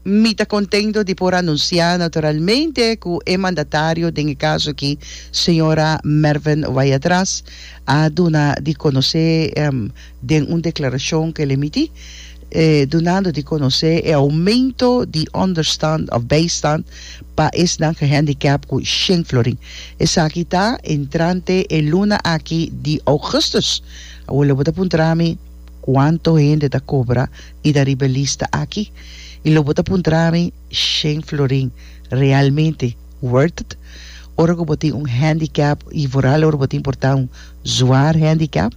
Mi ta contento di por anuncia naturalmente cu e mandatario den e caso aki, señora Mervin Wayatras, a duna di conoce den un declaracion cu el emiti, dunando di conoce e aumento di understand of bijstand pa esnan gehandicap cu shen florin. Esaki ta entrante e luna aki di augustus. Awor lo bo ta puntra mi. Cuanto hende ta cobra y ta riba e lista aki? Y lo bo ta puntra mi, Shane Florin, realmente worth it? Ora cu bo tin un handicap y vooral ora bo ta importa un zwaar handicap?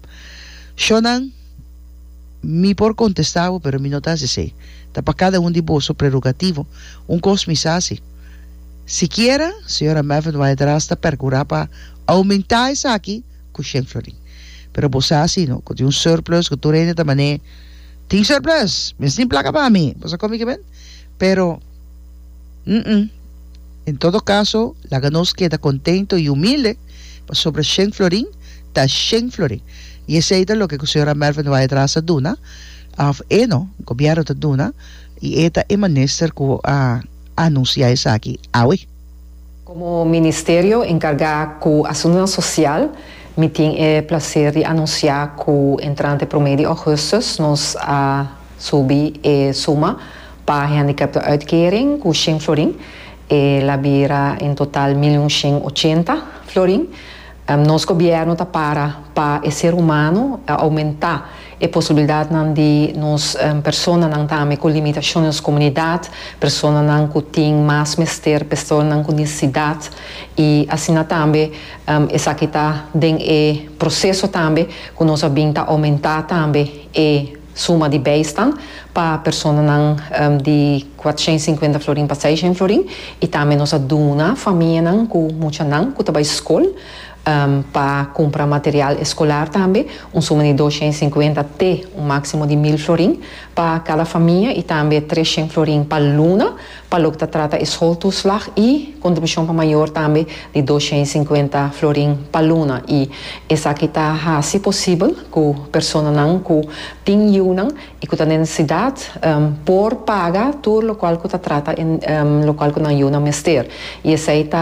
Sho nan, mi por contesta bo pero mi no ta haci esey. Ta pa cada un di boso prerogativo. Un cos mi sa haci. Sikiera, Señora Mavendwaai-Draas ta percura pa aumenta esaki, ku Shen Florin. Pero bo sa si no, ku tin un surplus ku tur hende ta man'é, Tin surplus! Mes tin plaka pa mi! Bo sa kon mi ke bend? Pero, hm. En todo kaso, laga nos keda kontento i humilde, pasobra Shen Florin ta Shen Florin. I esei ta loke ku señora Melva Nuwa Edraas ta duna, òf e no, gobièrnu ta duna, i e ta e minister ku a anunsiá esaki awe. Komo Ministerio enkargá ku Asuntunan Sosial, mi tin e plaser di anunsiá ku entrante promé di ougùstùs nos a subi e suma pa hendikèptenuitkering ku shen florin, e la bira en total milyun shen ochenta florin. Nos gobièrnu ta para pa e ser humano a oumentá e posibilidadnan di nos personanan tambe ku limitashon nos komunidat, personanan ku tin mas mester, personanan ku nesesidat i asina tambe esaki ta den e proseso tambe ku nos a bin ta oumentá tambe e suma di bèistan pa personanan di kuatrusent i sinkuenta florin pa seishent florin i tambe nos a duna famianan ku muchanan ku ta bai skol Pa kumpra material eskolar tambe, un suma di dos shen sinkuenta te un máksimo di mil florin pa kada famia i tambe tres shen florin pa luna pa loke ta trata e sholtoeslag i kontribushon pa mayor tambe di dos shen sinkuenta florin pa luna i esaki ta hasi posibel ku personanan ku tin yiunan i ku ta den nesidat por paga tur lokual ku ta trata lokual ku nan yiunan mester i esei ta